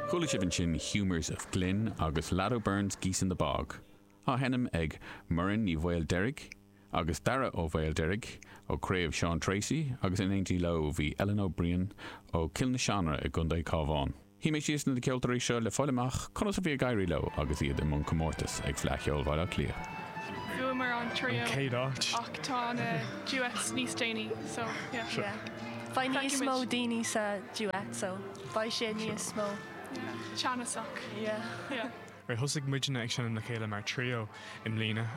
Chuala sibh ansin Humours of Glynn agus Lad O'Beirne's Geese in the Bog á sheinm ag Muireann Ní Mhaoildeirg agus Daire Ó Maoildeirg ó Craobh Seán Treacy agus in éindí leo bhí Ellen O'Brien ó Cill na Seanrátha i gContae Chabháin. Shuí mé síos leis na ceoltóirí seo le fáil amach conas a bhí ag éirí leo agus iad i mbun comórtas ag Fleadh Cheoil Bhaile Átha Cliath. Bhuamar an trio, céad áit ach tá na duets níos déanaí so yeah. Beidh níos mó daoine sa duet so beidh sé níos mó teannasach. Yeah. Nuair a thosaigh muidne ag seinm le chéile mar trio i mbliana,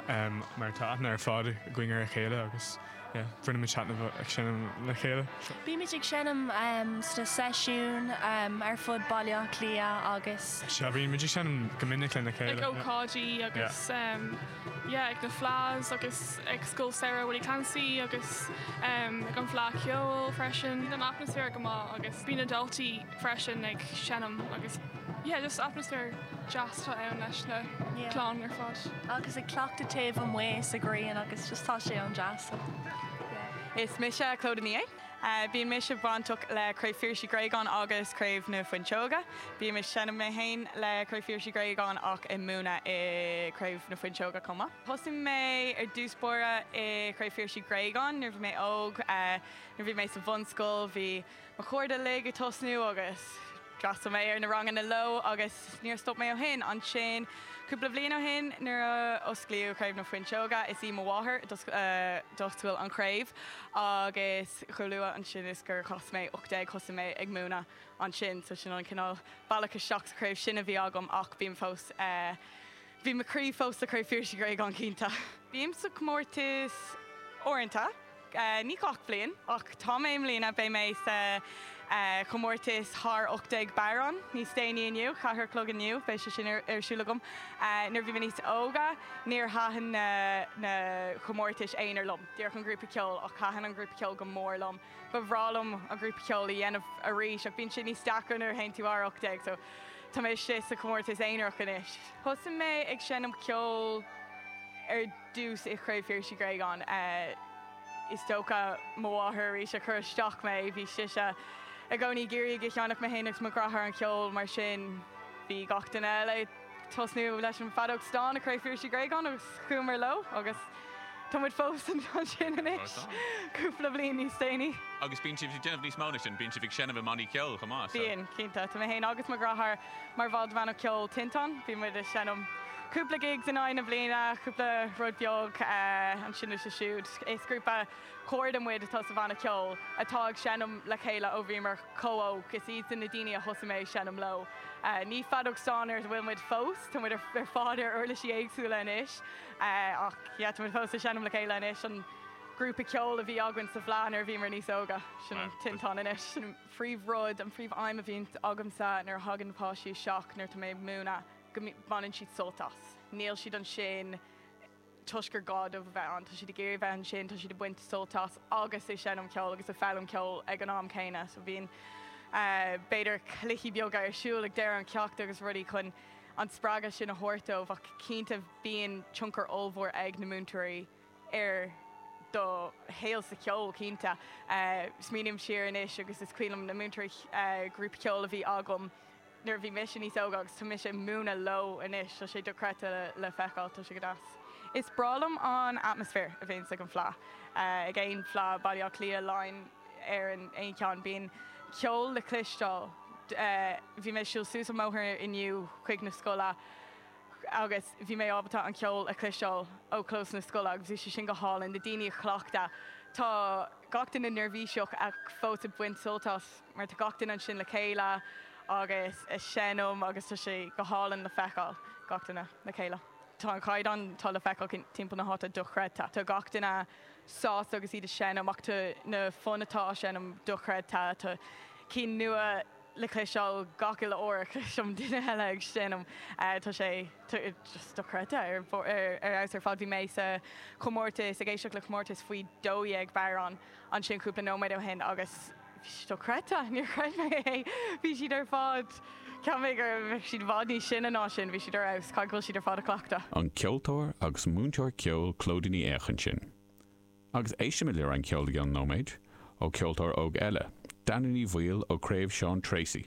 mar tá aithne ar fad againn ar a chéile agus yeah, bainimid taitneamh ag seinm le chéile. Bímid ag seinm sna seisiúin ar fud Baile Átha Cliath agus. Sea, bímid ag seinm go minic lena chéile. Ag ócáidí agus. yeah ag na fleadhs agus ag Scoil Samhraidh Willie Clancy agus ehm ag an fleadh ceoil freisin an atmaisféar go maith agus bhí na daltaí freisin ag seinm agus yeah just atmaisféar deas atá ann leis na clann ar fad. Agus ag cleachtadh taobh amuigh sa ghrian agus just tá sé an-deas. Is mise Clodagh Ní É. Bíonn mise bainteach le Craobh Phiarais Uí Ghréagáin agus Craobh na Fuinseoige. Bímse ag seinm mé féin le Craobh Phiarais Uí Ghréagáin ach ag múineadh i Craobh na Fuinseoige chomh maith. Thosaigh mé ar dtús báire i Craobh Phiarais Uí Ghréagáin nuair a bhí mé óg. Nuair a bhí mé sa bhunscoil bhí mo chairde uilig ag tosnú agus. D'fhreastal mé ar na ranganna leo agus níor stop mé ó shin. Ansin cúpla bliain ó shin nuair a osclaíodh Craobh na Fuinseoige, is í mo mháthair d'oscail an chraobh agus chomh luath ansin is gur chas mé 18 thosaigh mé ag múineadh ansin. So sin an cineál bealach isteach sa chraobh sin a bhí agam ach bím fós. Bhí mo chroí fós le Craobh Phiarais Uí Ghréagáin cinnte. Bím sa chomórtas uaireanta, ní gach bliain ach tá mé i mbliana. Beidh mé sa chomórtas thar 18 bodhrán níos déanaí inniu, ceathair a chlog inniu beidh sé sin ar siúl agam. Nuair a bhí mé níos óga níor thaitin na chomórtais aonair liom, díreach an grúpa ceoil, ach thaitin an grúpa ceoil go mór liom. Ba bhreá liom an grúpa ceoil a dhéanamh arís ach bíonn sé níos deacra nuair a théann tú thar 18 so tá mé istigh sa chomórtas aonarach anois. Thosaigh mé ag seinm ceoil ar dtús i Craobh Phiarais Uí Ghréagáin. Is dócha mo mháthair arís a chuir isteach mé, bhí sise i gcónaí ag iarraidh go seinnfeadh mé fhéin agus mo dheartháir an ceol mar sin bhí gach duine eile, Tosnú leis an feadóg stáin i Craobh Phiarais Uí Ghréagáin agus chuamar leo agus tá muid fós ansin anois, cúpla bliain níos déanaí. Agus bíonn sibh ag déanamh níos mó ná sin, bíonn sibh ag seinm i mbannaí ceoil chomh maith, so. Bíonn, cinnte. Tá mé féin agus mo dheartháir mar bhaill de bhanna ceoil Tinteán. Bíonn muid ag seinm cúpla gigs in aghaidh na bliana, cúpla rud beag anseo is ansiúd. Is grúpa cairde muid atá sa bhanna ceoil atá ag seinm le chéile ó bhíomar chomh hóg, is iadsan na daoine a thosaigh mé ag seinm leo. Ní feadóg stáin a bhfuil muid fós, tá muid ar fad ar uirlisí éagsúla anois, ach yeah, tá muid fós ag seinm le chéile anois. An grúpa ceoil a bhí againn sa bhFleadh nuair a bhíomar níos óga, sin an Tinteán anois. An phríomh rud, an phríomh aidhm a bhíonn agamsa nuair a thagann na páistí isteach nuair atá mé ag múineadh, go mbaineann siad sult as. Níl siad ansin. toisc gur gá dóibh a bheith ann, tá siad ag iarraidh a bheith ansin, tá siad ag baint sult as agus ag seinm ceoil agus ag foghlaim ceoil ag an am céanna. So bhíonn b'fhéidir cluichí beaga ar siúl ag deireadh an cheachta agus rudaí chun an spreagadh sin a thabhairt dóibh ach cinnte bíonn tionchar ollmhór ag na múinteoirí ar do shaol sa cheol cinnte. Smaoiním siar anois agus is cuimhin liom na múinteoirí grúpa ceoil a bhí agam, nuair a bhí mise níos óga agus tá mise ag múineadh leo anois, tá sé dochreidte le feiceáil, tá sé go deas. Is breá liom an atmaisféar a bhíonns ag an Fleadh, ag aon Fleadh, Baile Átha Cliath, Laighin, Éireann, aon cheann. Bíonn ceol le cloisteáil, bhí mé ag siúl suas an mbóthar inniu chuig na scoile agus bhí mé ábalta an ceol a chloisteáil ó chlós na scoile agus bhí sé sin go hálainn, na daoine ag cleachtadh, tá gach duine neirbhíseach ach fós ag baint sult as. mar tá gach duine ansin le chéile agus ag seinm agus tá sé go hálainn le feiceáil, gach duine le chéile. Tá an caighdeán atá le feiceáil timpeall na háite dochreidte. Tá gach duine sásta agus iad ag seinm ach tá na foinn atá á seinm dochreidte. Tá cinn nua le cloisteáil gach uile uair a chloisim duine eile ag seinm. Tá sé just dochreidte ar fheabhas ar fad. Bhí mé sa chomórtas, ag éisteacht le comórtas faoi dó dhéag bodhrán ansin cúpla nóiméad ó shin agus, Bhí siad dochreidte. Níor chreid mé é. Bhí siad ar fad, cheapfainn go raibh siad i bhfad níos sine ná sin, bhí siad ar fheabhas. Caithfidh go bhfuil siad ar fad ag cleachtadh. An ceoltóir agus múinteoir ceoil Clodagh Ní Aodha ansin. Agus éistfimid le roinnt ceoil i gcionn nóiméid, ó cheoltóir óg eile, Danny Ní Bhaoill ó Chraobh Seán Treacy.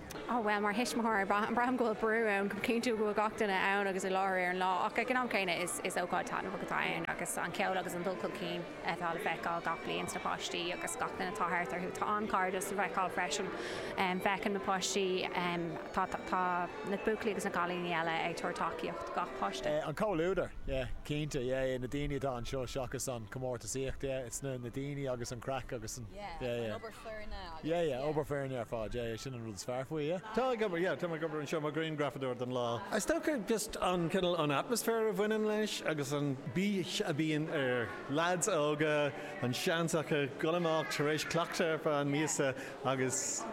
Á bhuel, mar thuismitheoir, braithim go bhfuil brú ann ag cinntiú go bhfuil gach duine ann agus i láthair ar an lá ach ag an am céanna is ócáid taitneamhach atá ann agus an ceol agus an dul chun cinn atá le feiceáil gach bliain sna páistí agus gach duine atá thart orthu. Tá an cairdeas le feiceáil freisin. Feiceann na páistí, tá na buachaillí agus na cailíní eile ag tabhairt tacaíocht do gach páiste. An comhluadar, yeah, cinnte, yeah, na daoine atá anseo seachas an comórtasaíocht, yeah, it's na daoine agus an craic agus an, yeah, yeah. Yeah, yeah, obair foirne ar fad, yeah, yeah, sin an rud is fearr faoi, yeah. Táim ag obair, yeah, táim ag obair anseo mar ghrianghrafadóir don lá. Is dócha just an cineál an atmaisféar a bhaineann leis agus an bís a bhíonn ar lads óga, an seans acu dul amach tar éis cleachtadh ar feadh míosa agus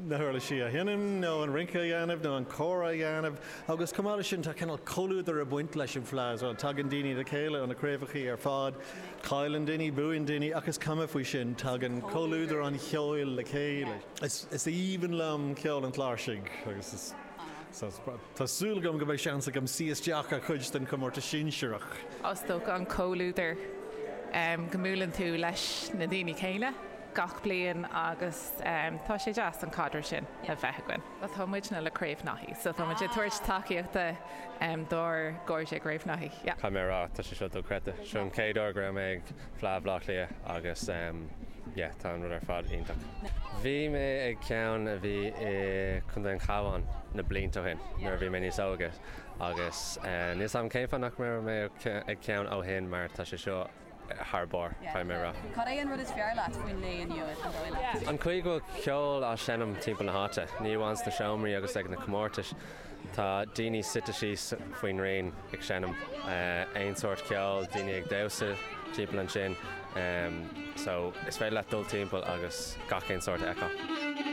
na huirlisí a sheinm nó an rince a dhéanamh nó an cór a dhéanamh agus chomh maith leis sin tá cineál comhluadar ag baint leis an bhfleadh so tagann daoine le chéile ó na craobhacha ar fad. Cailleann daoine, buann daoine ach is cuma faoi sin, tagann comhluadar an cheoil le chéile. Is aoibhinn liom ceol an chláirsigh agus tá súil agam go mbeidh seans agam suí isteach ar chuid den chomórtas sinsearach. Is dócha an comhluadar go mbuaileann tú leis na daoine céanna gach bliain agus tá sé deas an caidreamh sin a bheith againn. Tá muidne le Craobh Naithí so tá muid ag tabhairt tacaíochta dár gcairde Craobh Naithí. Caithfidh mé a rá, tá sé seo dochreidte. Seo an chéad uair go raibh mé ag Fleadh Bhleá Cliath agus yeah tá an rud ar fad iontach. Bhí mé ag ceann a bhí i Contae an Chabháin na blianta ó shin nuair a bhí mé níos óige agus níl 's agam cén fáth nach raibh mé ag ceann ó shin mar tá sé seo thar barr, caithfidh mé a rá. Cad é an rud is fearr leat faoin lae inniu, an dóigh leat? An chaoi go bhfuil ceol á seinm timpeall na háite, ní amháin sna seomraí agus ag na comórtais, tá daoine suite síos faoin ngréin ag seinm aon sórt ceoil, daoine ag damhsa timpeall ansin, so is féidir leat dul timpeall agus gach aon sórt a fheiceáil.